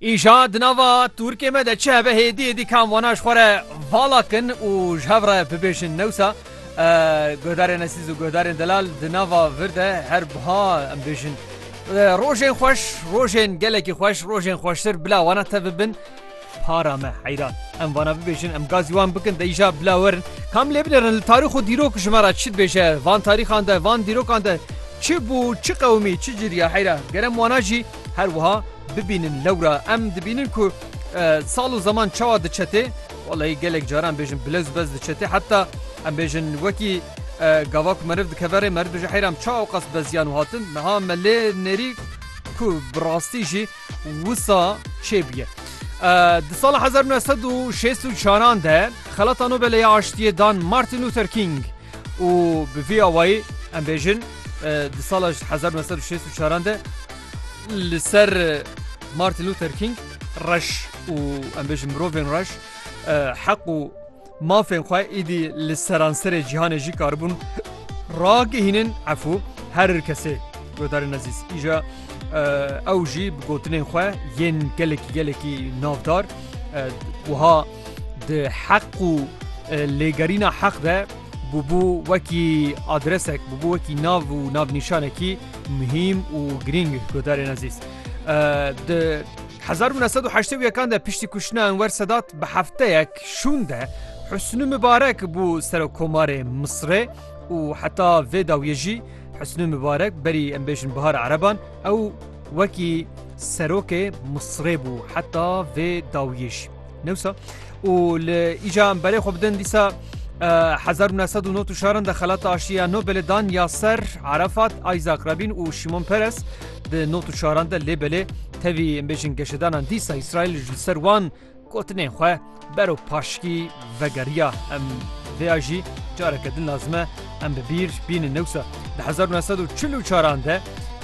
Îja di nava Turkê me de çihe be hêdiyê dî kam wana ji xwe re vala kin û ji hev re bibêjin newsa godarên esîz û godarên delal di nava vir de her buha em bêjin. Rojên xweş, rojên gelekî xweş, rojên xweştir bila wana te bibin. Para me heyran. Em vana bibêjin em gazî wan bikin de îja bila werin. Kam lê binêrin li tarîx û dîrok ji me re çi dibêje van tarîxan de van dîrokan de çi bû çi qewimî çi ciriya heyra ger em wana jî her wiha bibînin lewra em dibînin ku sal û zeman çawa diçetê weleyî gelek caran bêjin bilez bez diçetê heta em bêjin wekî gava ku meriv dikeve rê meriv dibêje heyram çawa qas beziyan û hatin meha me lê nêrî ku bi rastî jî Wisa çê bûye? Di sala hezar û neh sed û şêst û çaran de Xelata Nobelê ya Aştiyê dan Martin Luther King û bi vî awayî em bêjin di sala hezar û neh sed û şêst û çaran de li ser Martin Luther King reş û em bêjin mirovên reş heq û Mafên xwe îdî li seranserê cîhanê jî karibûn ragihînin efû herir kesê. Guhdarên ezîz îja ew jî bi gotinên xwe yên gelekî gelekî navdar wiha di heq û lêgerîna heq de bûbû wekî adresek bûbû wekî nav û navnîşanekî muhîm û girîng guhdarên ezîz. Di 1981 de piştî kuştina Enwer Sedat bi hefteyek Êrişek şûn de Husnû Mibarek bû Serokomarê Misirê û heta vê dawiyê jî Husnû Mibarek berî em bêjin bihara ereban ew wekî Serokê Misirê bû heta vê dawiyê jî newsa û li îca em berê xwe bidin dîsa 1990 şaran de xelata aşiya Nobelê dan ya ser Arafat, Isaac Rabin û Şimon Peres di not û şaran de lê belê tevî em bêjin geşedanan dîsa Îsraîl ji ser wan Gotinên xwe bero paşikî vegeriya em vê ya jî careke din lazim e em bi bîr bînin newsa di hezar û neh sed û çil û çaran de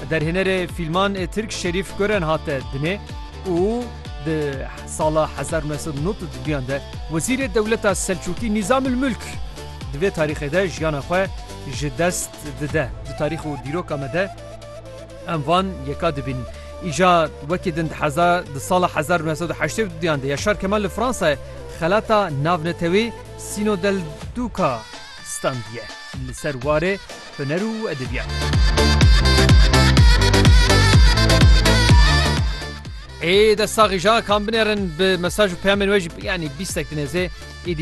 derhênerê fîlman Tirk Şerîf Gören hate dinê û di sala hezar û neh sed û nod û duyan de Wezîrê Dewleta Selçûkî Nîzamul Mulk di vê tarîxê de jiyana xwe ji dest dide di tarîx û dîroka me de Em van yeka dibînin. Îja wekî din di heza di sala hezar û neh sed û heştê û duyan de Yaşar Kemal li Fransayê xelata navnetewî Sîno del Duca standiye li ser warê huner û edebiyat. Ê dest saxî ja kan binêrin bi mesaj û peyamên wê jî yanî bîstek di nêzê êdî